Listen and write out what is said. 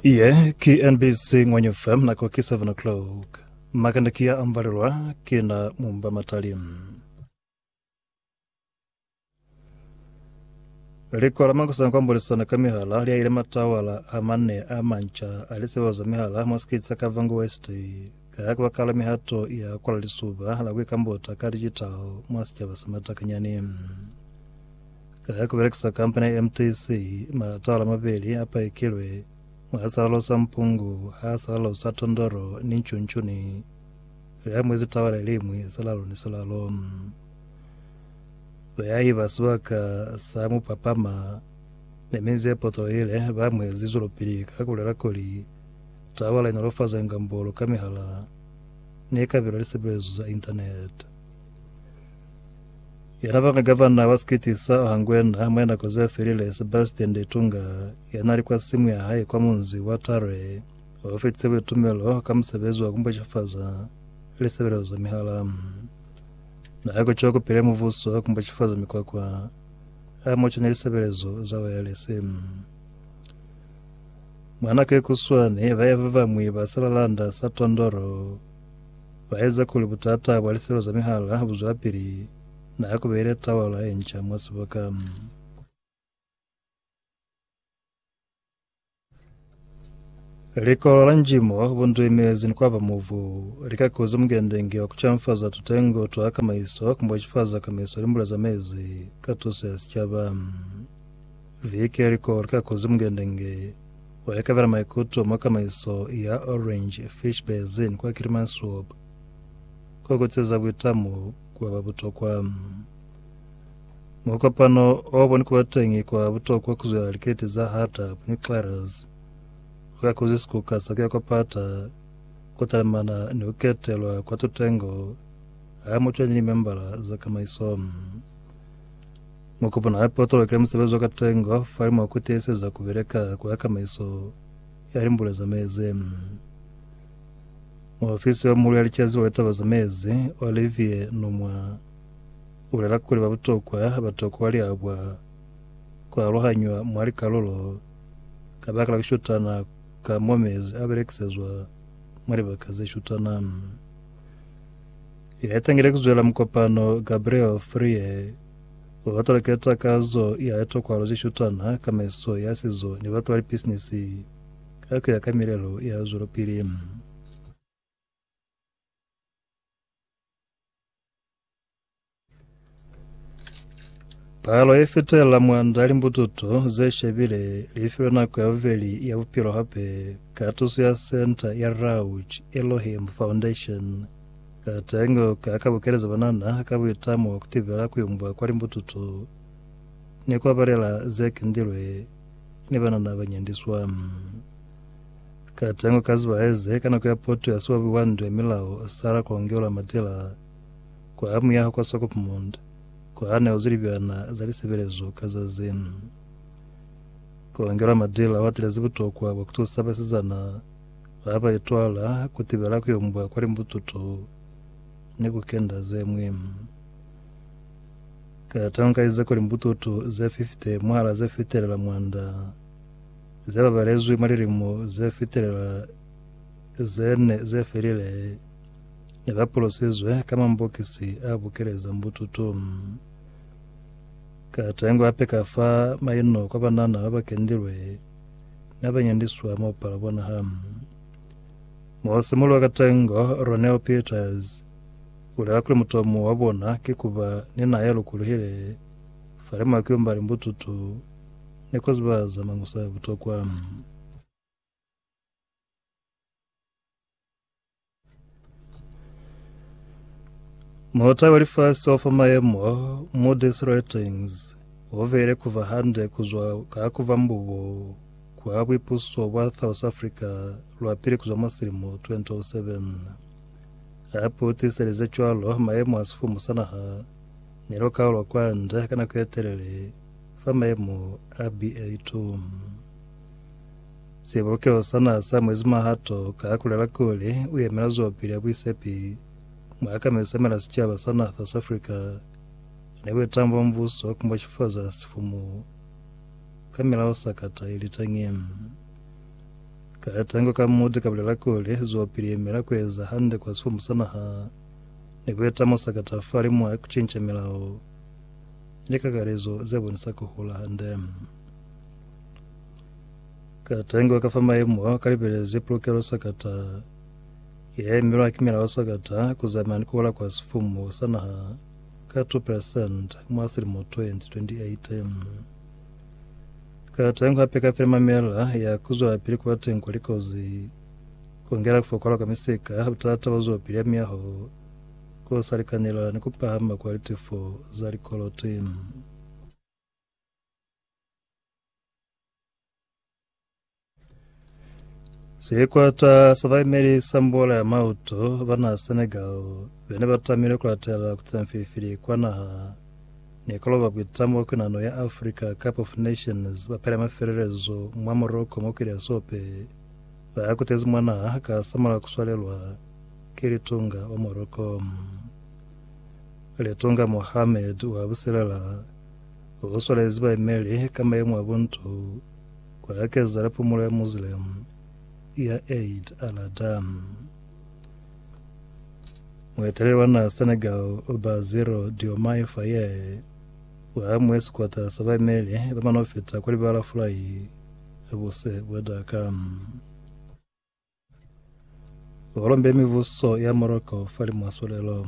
Ye ki NBC Ngwenyu FM nako ki 7 o'clock. Makanda ki ya ambalelwa ki na mumba matali. Liko la makusana kwa mbulisano ka mihala lya ile matawala a mane a manca a lisebo za mihala mwa sikiti sa Kavango West ka ya kubakala mihato ya kwala lisuba la kuikambota ka digital mwa sicaba sa Matakanyani. Ka ku belekisa kampani ya MTC, maatala mabeli a paikilwe, mwa a sa lalosa mpungu, ha a sa lalosa tondolo ni ncuncuni. Li amuezi tawa le liñwi silalo ni silalo. Bayahi ba sibaka sa Mupapama ni minzi ye potohile ba amuezi zwelopili ka ku lela kuli tawa le nolofaza ngambolo ka mihala ni kabelo ya lisebelezo za Internet. Yena banga gavana wa sikiti sa Ohangwena ha mwe nako ze felile Sebastian Ndetunga yana li kwa simu ya hae kwa munzi wa Tare o fetise buitumelo ka musebezi wa kumbweshifaza lisebelezo za mihala. Na ha kuco kupile muvuso kumbweshifaza mikwakwa a moca ni lisebelezo za wayalese. Mwanake kuswani baye ba bamwi ba selalanda sa Tondoro ba eza kuli butata bwa liselo za mihala bu zwelapili na ha ku beile tawala ye nca mwa siboka. Likolo la njimo, bunduimezi ni kwaba mubu li ka kuza mukendengi wa ku canfaza tutengo twa kamaiso ku mbo cifaza kamaiso limbula za mezi ka tuso ya sicaba. Viki yeliko lika kuzi mukendenge wa ikabela maikuto mwa kamaiso ya Orange Fish Basin kwa Kilimansuop ko kutiza buitamo kwa ba butokwa. Mukopano o boni kuba teñi kwa butokwa kuzwela liketi za Hardtap ni Claras uka kuzi sikuka sa kuya kwa pata kutalemana ni kuketelwa kwa tutengo ha mucwanyi ni membala za kamaiso. Mu kupona hape u toloke musebezi wa ka tengo fa limo ku tiiseza ku beleka ku ya kamaiso ya limbulo za mezi. Muofisi yo muhulu ya licaziba wa taba za mezi, Olivier Nomwa, u bulela kuli ba butokwa ba toko wa liabwa ku aluhanywa mwa likalulo kabakala ku shutana ka mo mezi a belekisezwa mwa libaka ze shutana. Ya itangile ku zwela mukopano Gabriel Frie Ku batwa lika ta kazo ya litokwalo ze shutana, kamaiso ya sizo, ni batwa lipisinisi ka kuya ka milelo ya zwelopili. Palo ye fetelela mwanda ya limbututo ze shebile li filwe nako ya bubeli ya bupilo hape ka tuso ya Senta ya Rauch Elohim Foundation. Katengo ka ka bukelezi banana ka buitamo ku tibela ku yumbwa kwa limbututu ni kwa balela ze kendilwe ni banana ba nyandiswa. Katengo ka ziba heze ka nako ya poto ya siwabi wa ndu ya milao Sarah Kongeula Matila kwa muyaho kwa Swakopmund kwa ha ne ozi libyana za lisebelezo ka zazi. Kongeula Matila o atelezi butokwa bwa ku tusa basizana Ha ba itwala ku tibela ku yombwa kwa limbututu ni ku kenda ze ñwi. Ka tankaize ko limbututu ze 50 mwahala ze fitelela mwanda ze babalezwi mwa lilimo ze fitelela ze ne ze felile ne ba pulosizwe ka mambokisi a bukeleza mbututu. Ka tengo hape ka fa maino kwa banana ba ba kendilwe Na ba nyandiswa mo pala bona ha mo simulwa ka tengo. Ronel Peters ulela kuli mutomo wa bona ki kuba ni naha ya lukuluhile fa le mwa kiumba li mbututu ni ku ziba za mañusa a butokwa. Mulota wa lifasi wa fa mayemo mo these ratings o vele ku va hande ku zwa ka ku va mbubo kwa buipuso bwa South Africa lwa pili ku zwa mwa silimo 2007. A pu tiselize cwalo mayemo a sifumu sa naha ni lo ka lwa kwande ka nako ye telele fa mayemo a BA2. Sibulukelo sa naha sa mwezi mahato ka ha kulela kuli u yemela zwelopili ya buisepi mwa akamisa mela sicaba sa naha sa South Africa ne bu etañi bwa mubuso ku mboxifaza sifumu ka milaho sakata ili tañi. Katengo ka Moody ka bulela kuli zwelopili yemela ku eza hande kwa sifumu sa naha ne ku eta mo sakata fali mwa ku cinca milaho ni likakalezo ze bonisa ku hula hande. Ka tengwa ka fa maemo ao, ka libelezi pulukelo sakata ya emelwa ki milao sakata ku zamaya ni ku hola kwa sifumu sa naha ka 2% mwa silimo 2028. Ka tengwa hape ka file mamela ya ku zwelapili ku ba teng kwa likozi, ku ngela ku fokola kwa misika, butata bwa zwelopili ya miyaho, ku sa likanelela ni ku pahama kwa litefo za likoloti. Sekwata sa baimeli sa mbola ya mauto ba naha Senegal bene ba tamile kulatela kutsemfilifili kwa naha ni koloba kuitamo kwa kwinano ya Africa Cup of Nations ba pela mafelelezo mwa Morocco mwa kwili ya sope ba kutezi mwa naha ka samala kuswalelwa ki litunga wa Morocco. Litunga Mohamed wa buselela Ku swalezi bayemeli ka mayemo a buntu ku hakezela pumulo ya Muslim ya Eid al-Adha. Mueteleli wa naha Senegal Bassirou Diomaye Faye u hamuhe sikwata sa bayemeli ba manofita kwa libala fulai buse bwa Dakar. Ho lombile mibuso ya Morocco fa li mwa swalelo.